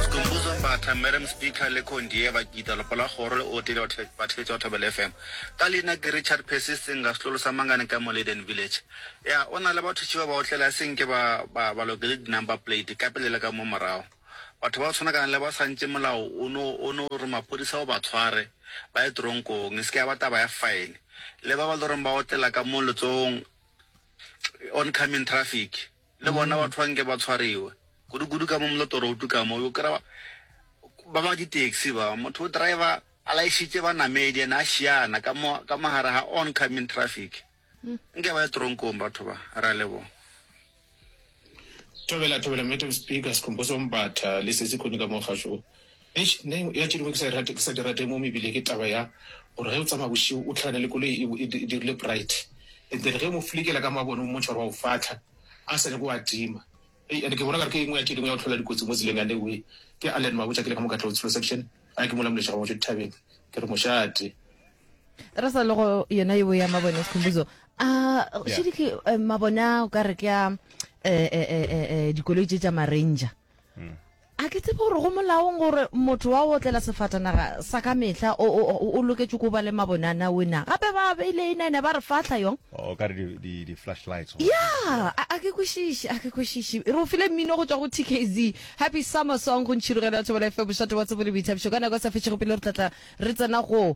Skhumbuzo Mbatha, Madam Speaker, le Condier Bakita, Lopo la Kgoro le Ote le Batheetsi ba Thobela FM. Ka leina ke Richard Percy Singa, setlolo sa Mangane ka mo Leiden Village. Ya, o na le batho tšiba ba otlela se nke ba, ba, ba lokele di-number plate, ka pele le ka mo morago. Batho ba go tshwana kana le ba sa ntše molao o no, o no re maphodisa o ba tshware, ba ye teronkong, e se ke ya ba taba ya fine. Le ba ba loreng ba otlela ka mo letsogong, oncoming traffic. Le bona batho ba nke ba tshwariwe. Kudu-kudu ka mo Molotoroutu ka mo, o yo kry-a ba ba di-taxi ba, motho o driver a laešitše banamedi and a šiana ka mo, ka mo gare ga oncoming traffic. Nke ba ye teronkong batho ba. Re a leboga. Thobela, thobela Madam Speaker, Sikhumbuzo Mbatha le sesi Khune ka mo kgašo Eish nna engwe ya tše dingwe ke sa e rate, ke sa di rate mo mebile ke taba ya gore ge o tsamaya bošego o tlhakane le koloi e bo e dirile bright and then ge o mo flikela ka mabone o mmontšha gore wa o fahla a sa nyake o a tima. Hei and ke bona kare ke engwe ya tše dingwe ya go hlola dikotsi mo tseleng yane we. Ke Allen Mabotja ke le ka mo Katlego Tshilo section gae ke mola Moleša ga Ngwatšo dithabeng ke re mošate. Re sa le go yona eo ya mabone Sikhumbuzo, a šedike mabone a o ka re ke a dikoloi tše tša ma-ranger? A ke tsebe gore go molaong gore motho wa go otlela sefatanaga sa ka mehla o, o, o, o loketše ko ba le mabonana we na. Gape ba beile inene ba re fahla yong. O ka re di, di, di flashlights. or- Ya, a, a ke kwešiše, a ke kwešiše. Re o file mmino go tšwa go TKZ. Happy Summer Song go ntšhirogelo ya Thobela FM, mošate wa tsebo le boithabišo. Ka nako e sa fetšego pele re tla tla re tsena go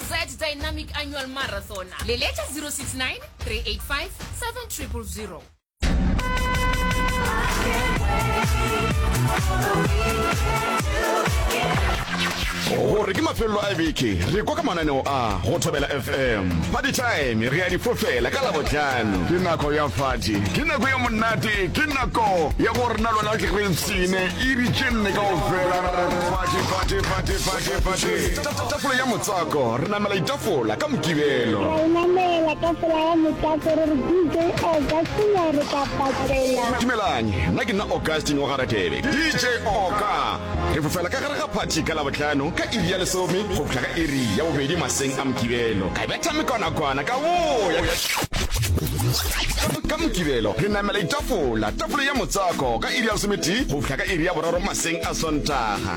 Sad Dynamic Annual Marathon. Leletša 069-385-7000. gore ke mafelelo a beke re kwa ka mananeo a go thobela fm party time re ya difofela ka labotlhano ke nako ya fati ke nako ya monate ke nako ya go rena lona ke re ntshine e ditšenne kao fela Tafole ya motswako, re namela itafola ka Mokibelo. Ra e namela tafola ya motswako, re re DJ Augustine a re ka patlela. Dumelang, nna ke nna Augustine wa Garatebe, DJ Oka. Re fofela ka gare ga phathi ka Labohlano ka iri ya lesome go fihla ka iri ya bobedi maseng a Mokibelo. Ka betha mekonakwana ka boya. Ka Mokibelo re namela itafola, tafole ya motswako, ka iri ya lesometee go fihla ka iri ya boraro maseng a Sontaga.